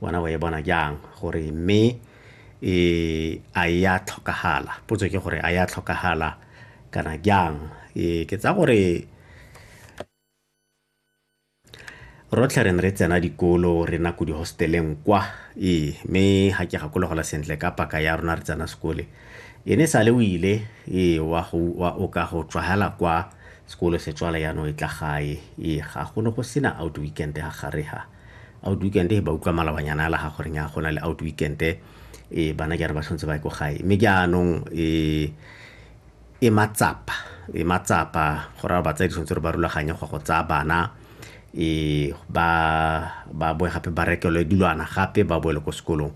wena wa e bona jang gore mme e a e ya tlhokagala potso ke gore a ya tlhokagala kana jang e ke tsa gore rotlhe re ne re tsena dikolo re nako di-hosteleng kwa ee mme ga ke gakologola sentle ka paka ya rona re tsena sekole e ne sale o ile ee wa o ka go tswagela kwa sekolo se tswala yanong e tla gae ee ga go ne go sena out weekend ga gare ga outweekend he ba utlwa malabanyana a laga goreng ya go na le outweekend e eh, bana jare ba tshwanetse ba ye ko gae mme jaanong eh, e matsapa e matsapa go raya batsadi tshwanetse gore ba rulaganye go go tsaya bana e ba ba boe gape ba rekelwe dilwana gape ba boele ko sekolong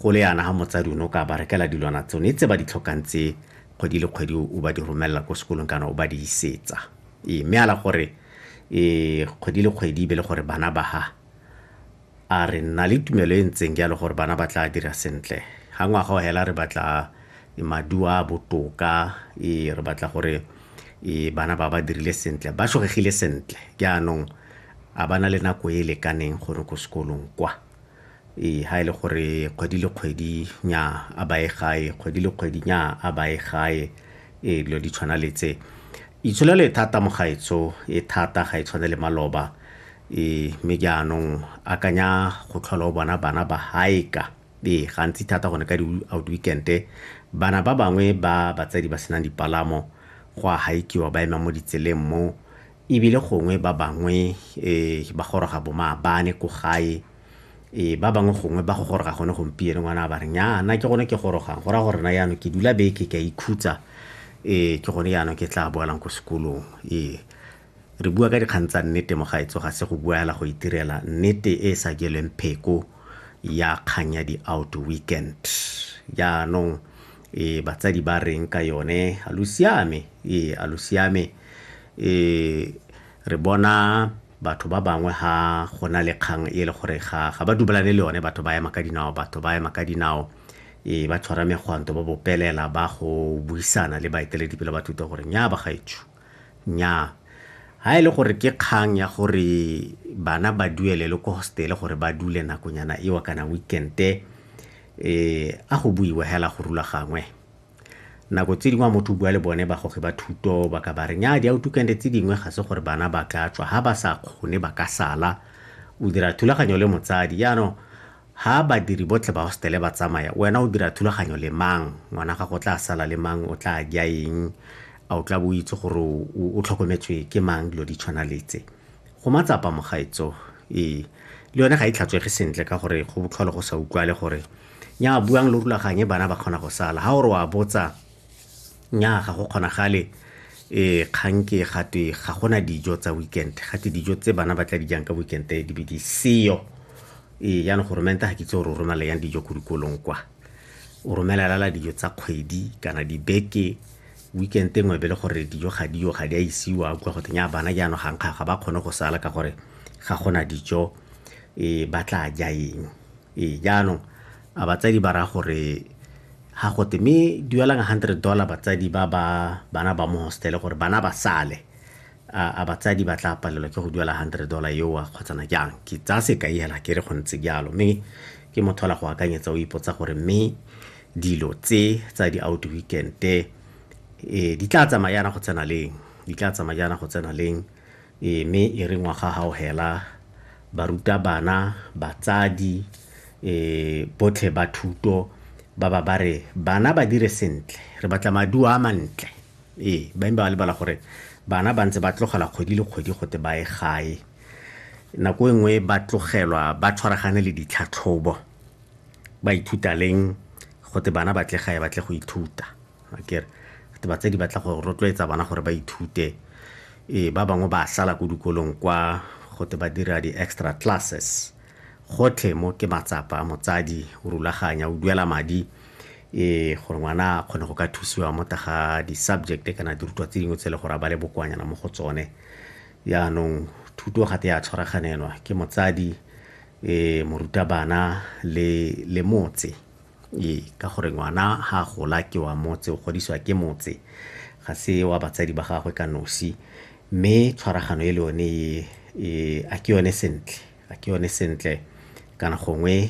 go le yana ga motsadi o ne o ka ba rekela dilwana tsone tse ba di tlhokang tse kgwedi le kgwedi o ba di romelela ko sekolong kana o ba di isetsa ee mme ala gore e kgwedi le kgwedi e be le gore bana ba ha a re nna le tumelo e ntseng jalo gore bana ba tla dira sentle ga ngwaga o hela re batla e, maduo a botoka e, re batla gore e, bana ba ba dirile sentle ba shogegile sentle jaanong a bana le nako e e lekaneng gore ko sekolong kwa Ee, ha e le gore kgwedi le kgwedi nya a baye gae kgwedi le kgwedi nya a baye gae ee dilo di tshwana le tse itsholelo e thata mo gaetsho e thata ga e tshwane le maloba ee mme jaanong akanya go tlhola o bona bana ba haeka ee gantsi thata gone ka di-out weekend-e bana ba bangwe ba batsadi ba senang dipalamo go a haikiwa ba ema mo ditseleng mo E bile gongwe ba bangwe ba goroga bo maabane ko gae, ba bangwe gongwe ba go goroga gone gompieno. Ngwana a ba re, Nnyaa, nna ke gone ke gorogang, go raya gore nna jaanong ke dula beke ke a ikhutsa, ee, ke gone jaanong ke tlaa boelang ko sekolong. Ee, re bua ka dikgang tsa nnete, mogaetsho, ga se go bua fela go itirela, nnete e e sa jelweng pheko ya kgang ya di-Outweekend. Jaanong. ee batsadi ba reng ka yone a lo siame ee a lo siame ee re bona batho ba bangwe ha go na le kgang e le gore ga ga ba dubalane le yone batho ba ema ka dinao batho ba ema ka dinao ee ba tshwara megwanto ba bopelela ba go buisana le baeteledipele ba thuto gore nya ba gaetsho Nnyaa. Ha e le gore ke kgang ya gore bana ba duelelwe ko hostel gore ba dule nakonyana eo kana weekend-e, a go buiwe hela go rulagangwe. Nako tse dingwe ha motho o bua le bone bagogi ba thuto ba ka ba re, nnyaa di-weekend-e tse dingwe ga se gore bana ba ka tswa, ha ba sa kgone ba ka sala. O dira thulaganyo le motsadi, jaanong Ha badiri botlhe ba hostele ba tsamaya, wena o dira thulaganyo le mang? Ngwana gago o tla sala le mang? O tla ja eng? A o tla bo o itse gore o tlhokometswe ke mang? Dilo di tshwana le tse. Go matsapa mogaetso. Ee, le yone ga e tlhatswege sentle ka gore go botlhole go sa utlwale gore, Nnyaa, buang lo rulaganye bana ba kgona go sala. Ha o re o a botsa, nnyaa ga go kgonagale e kgang ke gatwe ga gona dijo tsa weekend ga te dijo tse bana ba tla di jang ka weekend e di be di seyo ee jaanong goromente ga ke itse gore o romela yang dijo ko dikolong kwa o romelelala dijo tsa kgwedi kana dibeke weekend e nngwe be le gore dijo ga diyo ga di a isiwa kwa go teng ya bana jaanong ga nkga ga ba kgone go sala ka gore ga gona dijo e ba tla ja eng Ee, jaanong a batsadi ba raya gore ga gote mme duelang hundred dollar batsadi ba ba bana ba mo hostele gore bana ba sale a batsadi ba tla palelwa ke go duela hundred dollar eoa kgotsana jang ke tsaya sekai hela ke re go ntse jalo mme ke motho ola go akanyetsa o ipotsa gore mme dilo tse tsa di-out weekend-e um di tla tsamaya yana go tsena leng di tla tsamaya yana go tsena leng Ee, mme e re ngwaga ga o hela, barutabana, batsadi, botlhe ba thuto ba ba ba re, Bana ba dire sentle. Re batla maduo a mantle. Ee, ba imba ba lebala gore bana ba ntse ba tlogela kgwedi le kgwedi gote ba ye gae. Nako e nngwe ba tlogelwa ba tshwaragane le ditlhatlhobo. Ba ithuta leng gote bana ba tle gae ba tle go ithuta? akere ba tse di batla go rotloetsa bana gore ba ithute ee ba bangwe ba sala ko dikolong kwa gote ba dira di-extra classes gotlhe mo ke matsapa motsadi o rulaganya o duela madi ee gore ngwana a kgone go ka thusiwa mo taga di-subject kana dirutwa tse dingwe tse e le gore a ba le bokwanyana mo go tsone yaanong thuto gate ya tshwaraganelwa ke motsadi um morutabana le le motse Ee, ka gore ngwana ga a gola ke wa motse, o godisiwa ke motse, ga se wa batsadi ba gagwe ka nosi. Mme tshwaragano e le yone e, a ke yone sentle, a ke yone sentle kana gongwe.